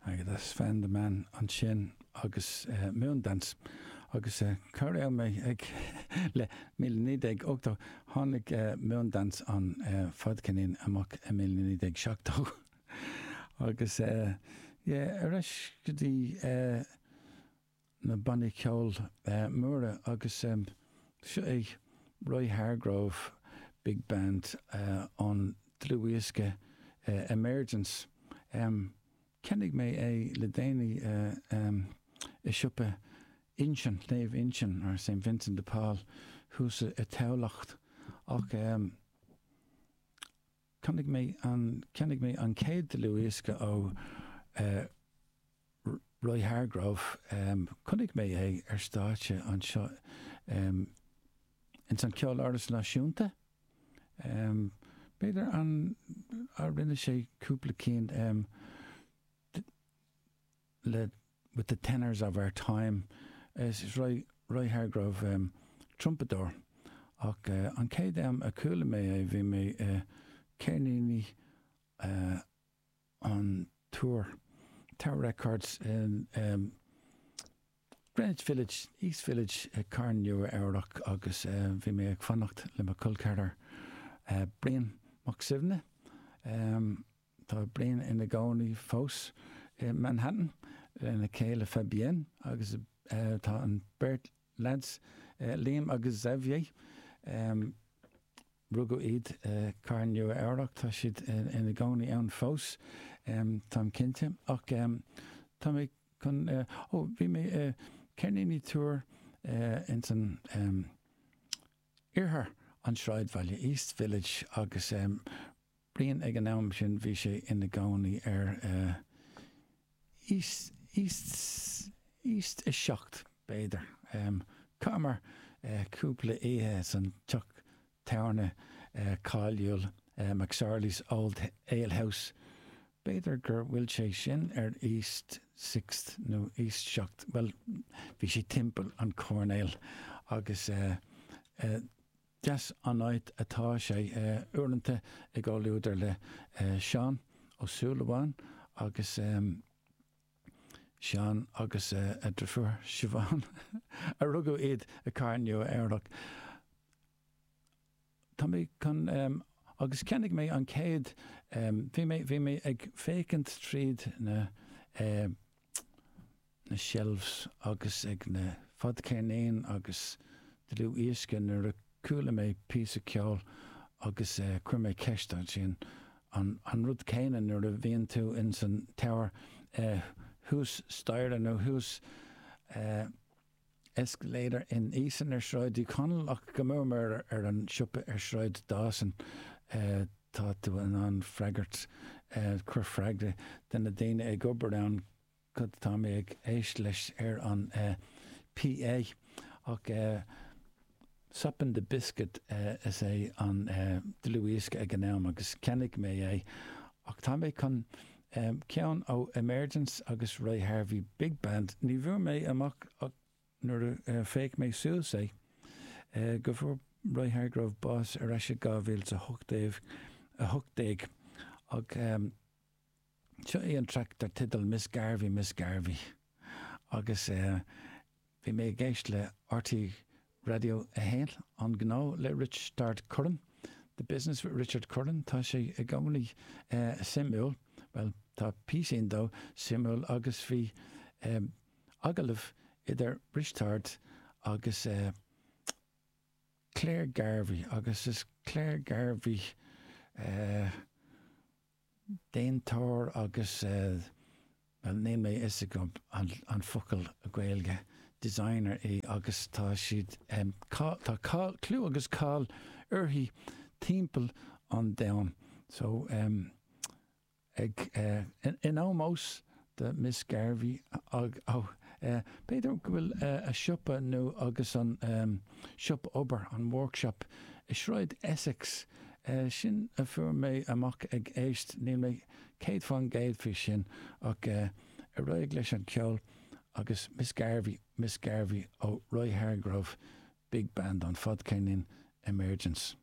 Agat, Was fan de mé ansin agus Moondance agus cá raibh mé le míle naoi déag ochtó tháinig Moondance an fadcheirnín amach i míle naoi déag seachtó agus yeah ar ais go dtí na bannaí ceoil móra agus seo é Roy Hargrove Big Band ón dlúthdhiosca Emergence. Cheannaigh mé é le déanaí i siopa Uinseann, Naomh Uinseann, or Saint Vincent de Paul, thuas i dTamhlacht ach Cheannaigh mé an, cheannaigh mé an chéad dlúthdhiosca ó eh Roy Hargrove, em chonaic mé é ar stáitse anseo em ins an Ceoláras Náisiúnta, em b'fhéidir an, a rinne sé cúpla cinn em, le with the Tenors of Our Time. Is Roy Hargrove trumpadóir ach an chéad am a chuala mé é bhí mé i gceirníní an Tour, Tower Records i Greenwich Village, East Village i gCathair Nua Eabhrac agus bhí mé ag fanacht le mo cholceathrar Brian Mac Suibhne. Tá Brian ina gcónaí fós i Manhattan lena chéile Fabienne agus tá an beirt leaids, Liam agus Xavier, rugadh iad i gcathair Nua Eabhrac, tá siad ina gcónaí ann fós, táim cinnte. Ach tá mé chun, ó, bhí mé i gceirníní Tower ins an, Iarthar an tSráidbhaile, East Village, agus Brian ag an am sin bhí sé ina gcónaí ar East, East, East Seacht b'fhéidir. Chaitheamar cúpla oíche san teach tábhairne cáiliúil McSorley's Old Ale House B'fhéidir gur bhfuil sé sin ar East Sixth nó East Seacht, bhuel, bhí sé timpeall an choirnéil agus deas an áit atá sé. Uaireanta i gcomhluadar le Seán Ó Súilleabháin agus Seán agus a dheirfiúr Siobhán a rugadh iad i gCathair Nua-Eabhrac. tá mé chun agus cheannaigh mé an chéad bhí mé bhí mé ag féachaint tríd na na shelves agus ag na fadcheirníní agus dlúthdhioscaí nuair a chuala mé píosa ceoil agus chuir mé ceist ansin an an rud céanna nuair a bhíonn tú insan Tower thuas staighre nó thuas an escalator in Easons ar Shráid Uí Chonaill ach go mórmhór an siopa ar Shráid Dawson tá tú in ann freagairt cur freagra de na daoine ag obair ann cad atá mé ag éist leis ar an PA ach Soppin' the Biscuit is é an dlúthdhiosca ag an am agus cheannaigh mé é ach tá mé chun ceann ó Emergence agus Roy Hargrove Big Band, ní bhfuair mé amach ach nuair a d'fhéach mé suas é go bhfuair Roy Hargrove bás ar ais i 2018, ach. Seo é an traic dar teideal Miss Garvey, Miss Garvey agus bhí mé ag éist le RTÉ Raidió 1, An Gnó le Risteárd Curran, The Business with Richard Curran, tá sé i gcónaí suimiúil, bhuel, tá píosaí dó suimiúil agus bhí agallamh idir Risteárd agus Claire Garvey agus is Claire Garvey eh. déantóir agus, bhuel, níl a fhios agam an focal Gaeilge, designer í agus tá siad, cáil, tá cáil, clú agus cáil uirthi timpeall an domhain. So, ag, in ómós do Miss Garvey ag oh eh b'fhéidir go bhfuil eh a siopa nó agus an ehm siopa obair an workshop i Sráid Essex eh sin a fuair mé amach ag éist níl mé céad faoin gcéad faoi sin ach eh ar aghaidh leis an ceol agus Miss Garvey Miss Garvey ó Roy Hargrove big band an fadcheirnín Emergence.